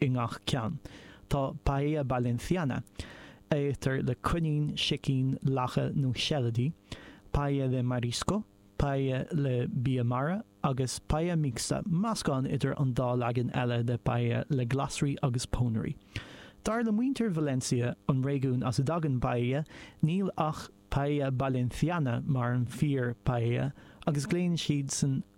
i ngach ceann. Tá Paella Valenciana, a itear le coinín, sicín, lacha nó seilidí, Paella de Marisco, Paella le bia mara, agus Paella Mixta, meascán idir an dá leagan eile le Paella le glasraí agus pónairí. Dar le muintir Valencia, an réigiún as a dtagann Paella, níl ach Paella Valenciana mar an fíor-Paella agus glaonn siadsan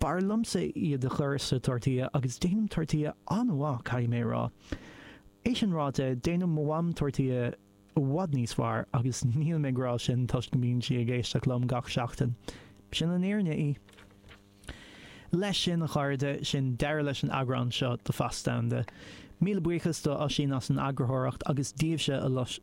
B'fhearr liomsa iad a chur sa tortilla agus déanaim tortilla an-mhaith, caithfidh mé a rá. É sin ráite, déanann mo mham tortilla i bhfad níos fearr agus nílim ag rá sin toisc go mbíonn sí ag éisteacht liom gach seachtain. Sin an fhírinne í. Leis sin, a chairde, sin deireadh leis an eagrán seo de Feasta Domhanda. Míle buíochas do Oisín as an eagarthóireacht agus daoibhse a lucht.